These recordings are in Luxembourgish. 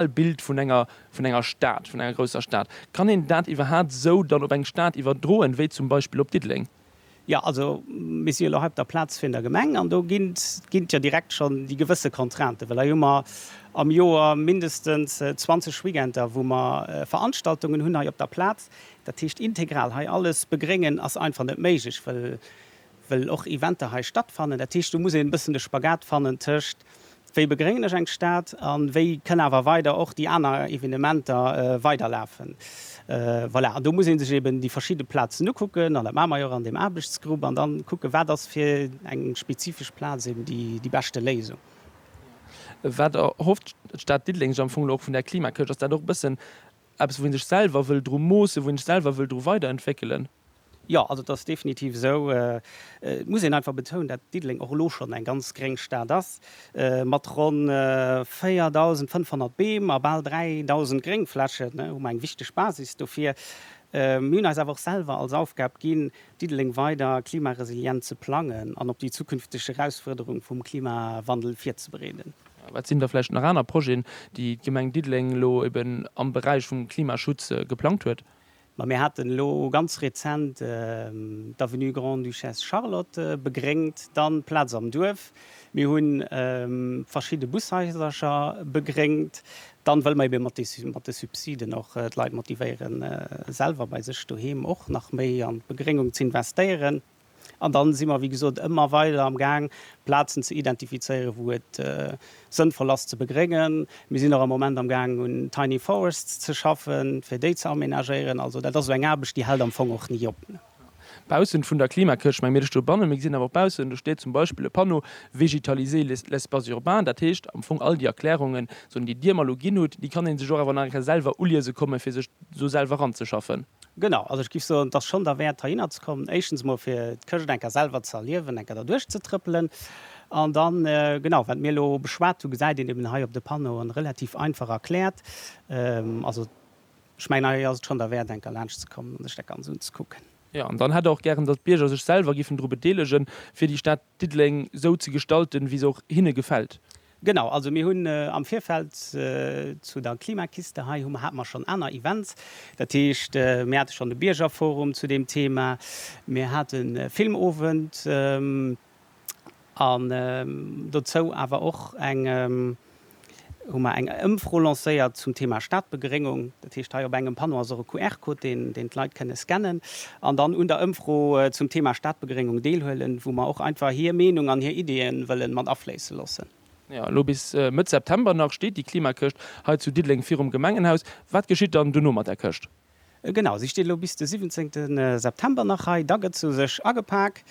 ideal Bild vun enger vun enger Stad, vun enger grousser Stad. Kann een dat iwwerhaapt esou dann op eng Stad iwwerdroen, wéi zum Beispill op Diddeleng? Jo, also mir si jo elo hei op der Plaz vun der Gemeng an do ginn ginn et jo direkt schonn déi gewësse Contrainten, well hei hu mer am Joer mindestens 20 Weekender, wou mer Veranstaltungen hunn hei op der Plaz. Dat heescht, integral hei alles begréngen ass einfach net méiglech, well well och Eventer hei stattfannen. Dat heescht, do muss een e bëssen de Spagat fannen tëscht, wéi begréngen ech eng Stad a wéi kënne awer weider och déi aner Evenementer weiderlafen. Voilà, an do muss ee sech eeben déi verschidde Plazen ukucken, an dat maache mer jo och an deem Aarbechtsgrupp, an da kucken, wat ass fir eng spezifesch Plaz eeben déi beschte Léisung. Wat erhofft d'Stad Diddeleng sech am Fong elo och vun där Klimakëscht? Ass dat och e bëssen Eppes, wou ee sech selwer wëll dru moossen, wou ee sech selwer wëll dru weiderentwéckelen. Jo, also et ass definitiv esou. Et muss een einfach betounen, dat Diddeleng och elo schonn eng ganz gréng Stad ass, mat ronn 4.500 Beem a bal 3.000 Gréngflächen hu mer eng wichteg Basis dofir. Mir hunn eis awer och selwer als Aufgab ginn, Diddeleng weider klimaresilient ze plangen an op déi zukünfteg Erausfuerderung vum Klimawandel virzebereeden. Wat sinn da vläicht nach aner Projeten, déi d'Gemeng Diddeleng elo eben am Beräich vum Klimaschutz geplangt huet? Ma mir haten elo ganz rezent d'Avenue Grande-Duchesse Charlotte begréngt, dann d'Plaz am Duerf, mir hu verschidde Bushaisercher begréngt, dann wëlle mer eben mat de Subsiden och d'Leit motivéieren, selwer bei sech doheem och nach méi an d'Begréngung z'investéieren. An dann si mer, wéi gesot, ëmmer weider am Gaang, Plazen ze identifizéieren, wou et sënnvoll ass ze begréngen. Mir sinn och am Moment am Gaang un Tiny Forests ze schaffen, fir déi ze amenagéieren. Also dat ass esou eng Aarbecht, déi hält am Fong och ni op. Baussent vun der Klimakëscht, meng mir, ech do bannen, mir gesinn awer och baussen, do steet zum Beispill e Panneau, Végétaliser l'espace urbain. Dat heescht am Fong, all déi Erklärungen, esou déi Dir mer elo ginn hutt, déi kann ee sech och awer nach eng Kéier selwer uliese kommen, fir sech do selwer eranzeschaffen. Genau, also ech géif soen, et ass schonn derwäert heihinner ze kommen, éischtens emol fir d'Chrëscht enker selwer ze erliewen, enker derduerch ze trëppelen. An da genau, wat mir elo beschwat hunn, gesäit een eben hei op de Panneauen relativ einfach erkläert. Also ech mengen, hei ass et schonn derwäert enker laanscht ze kommen an sech dat Ganz unzekucken. Jo, an dann hätt och gären, datt d'Bierger sech selwer géifen dru bedeelegen, fir déi Stad Diddeleng esou ze gestalten, wéi se och hinne gefält. Genau, also mir hunn am Virfeld zu der Klimakiste hei hu mer, hate mer schonn aner Events. Dat heescht, mir hate schonn de Biergerforum zu deem Thema, mir haten e Filmowend an dozou awer och eng, hu mer eng Ëmfro lancéiert zum Thema Stadbegeréngung. Dat heescht, hei op engem Panneau ass och e QR-Code, deen deen d'Leit kënne scannen an dann un der Ëmfro zum Thema Stadbegréngung deelhuelen, wou mer och einfach hir Meenung an hir Ideeë wëlle mat afléisse loossen. Jo, elo bis Mëtt September nach steet déi Klimakëscht hei zu Diddeleng virum Gemengenhaus. Wat geschitt dann dono mat där Këscht? Genau, si steet elo bis de 17. September nach hei. Da gëtt se u sech agepak.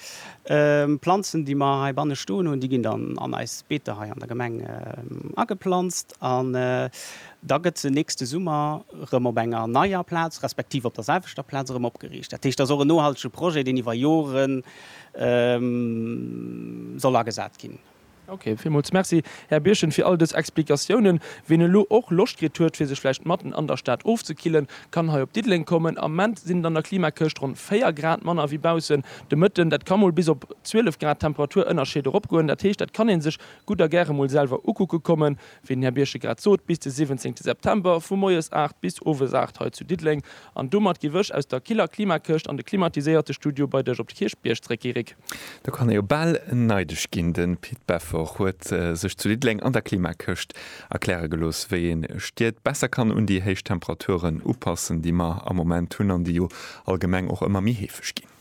Planzen, déi mer heibanne stoen hunn, déi ginn dann an eis Beeter hei an der Gemeng ageplanzt. An da gëtt se nächste Summer erëm op enger neier Plaz, respektiv op der selwechter Plaz erëm opgeriicht. Dat heescht, dat ass och en nohaltege Projet, deen iwwer Jore soll agesat ginn. Ok, villmools Merci, Här Birchen, fir all dës Explikatiounen. Wien elo och Loscht kritt huet, fir sech vläicht matten an der Stad ofzekillen, kann hei op Diddeleng kommen. Am Moment sinn et an der Klimakëscht ronn 4 Grad manner wéi baussen. De Mëtten, dat ka mol bis op 12 Grad Temperaturënnerscheed eropgoen. Dat heescht, dat kann ee sech Gutt a gäre mol selwer ukucke kommen, wéi den Här Birche grad sot, bis de 17 September vu moies 8 bis owes 8 hei zu Diddeleng. An domat giff ech aus der killer Klimakëscht an de klimatiséierte Studio bei dech op de Kierchbierg zréck gi, Rik. Da kann ee jo bal neideg ginn. De Pit Beffort huet sech zu Diddeleng an der Klimakëscht erkläre gelooss, wéi een Stied besser kann un déi héich Temperaturen upassen, déi mer am Moment hunn an déi jo allgemeng och ëmmer méi heefeg ginn.